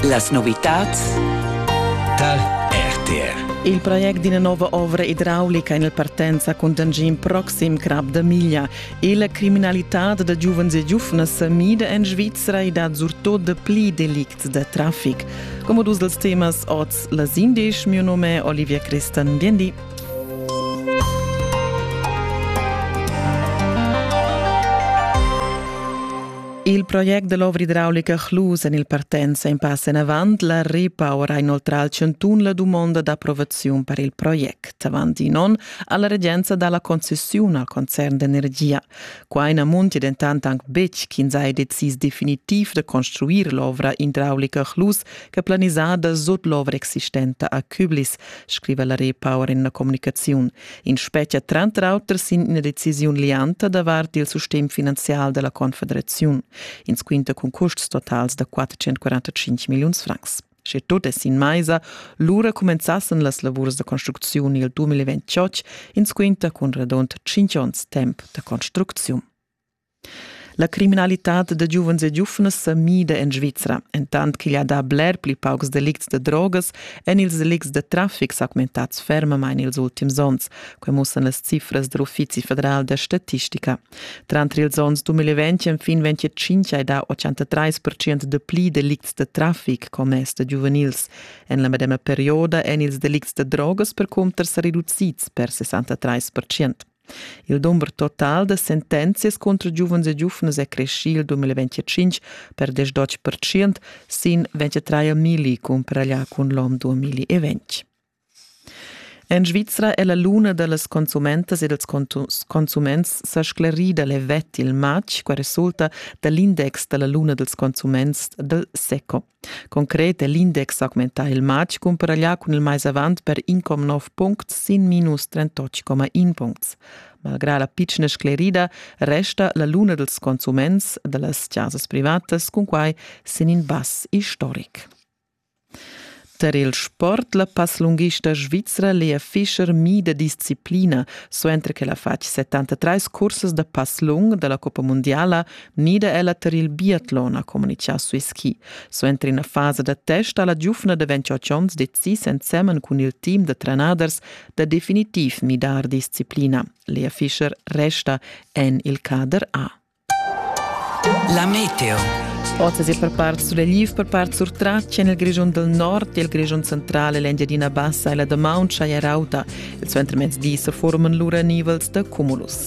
Las novitads dal RTR. Il project d'ina nova ovra idraulica en il partenza cun d'angin proxim Crap da Miglia e la criminalitad da giuvens e giuvnas sa mida en Svizra e dat surtut de pli delicts da traffic. Come dus dels temas oz las indisch, mio nome è Olivia Christan. Bien di. Il project da l'ovra idraulica Chlus en il partenza in pass enavant, la Repower ha inoltrà al chantun la dumonda d'approvaziun per il project. Avant in onn ha la regenza dà la concessiun al concern d'energia. Qua na muntia dentant anc betg ch'ins ha decis definitiv da construir l'ovra idraulica Chlus che planisada sut l'ovra existenta a Küblis, scriva la Repower en la communicaziun. In spetga tranter auter sin ina decisiun lianta davart il sistem finanzial della Confederaziun. Ins quinta cun custs totals da 445 milliuns francs. Sche tot è sin maisa, lura comenzassen las lavurs da construcziun il 2028, ins quinta cun radont 5 onns temp da construcziun. La criminalitad da giuvens e giuvnas sa mida en Svizra, entant ch'igl ha dà bler pli paucs delicts da drogas èn ils delicts da traffic s'augmentads fermamain ils ultims onns. Quai mussan las cifras da l'Uffizi federal da statistica. Tranter ils onns 2020 enfin 2025 hai dà 83% da pli delicts da traffic commess da giuvenils. En la medema perioda èn ils delicts da drogas percunter sa reducids per 63%. Il dumber total da sentenzias cunter giuvens e giuvnas è creschì il 2025 per 18 percent sin 23 milli cumparà cun l'om 2020. En Svizra è la luna da las consumentas e dals consuments sa sclerida levet il matg, qua resulta da l'index da la luna dals consuments dal SECO. Concret è l'index augmentà il matg cumparaglià cun il mais avant per 1,9 puncts sin minus 38,1 puncts. Malgrà la pitschna sclerida resta la luna dels consuments da las chasas privatas cun quai sin in bass istoric. Per il sport la passlunghista svizra Lea Fischer mida disciplina, suenter che la fatg 73 cursas da passlung dalla Coppa Mondiala nida ella ter il biatlon ha communichà sui ski. Suenter ina fasa da test ha la giufna da 28 onns decis ensemen cun il team da trenaders da definitiv midar disciplina. Lea Fischer resta en il cader A. La meteo. Oz è per part sulegliv, per part surtratg en il Grischun del Nord e il Grischun central e l'Engiadina Bassa e la damaun schaia rauta. Il suentermezdi se forman lura nivels da cumulus.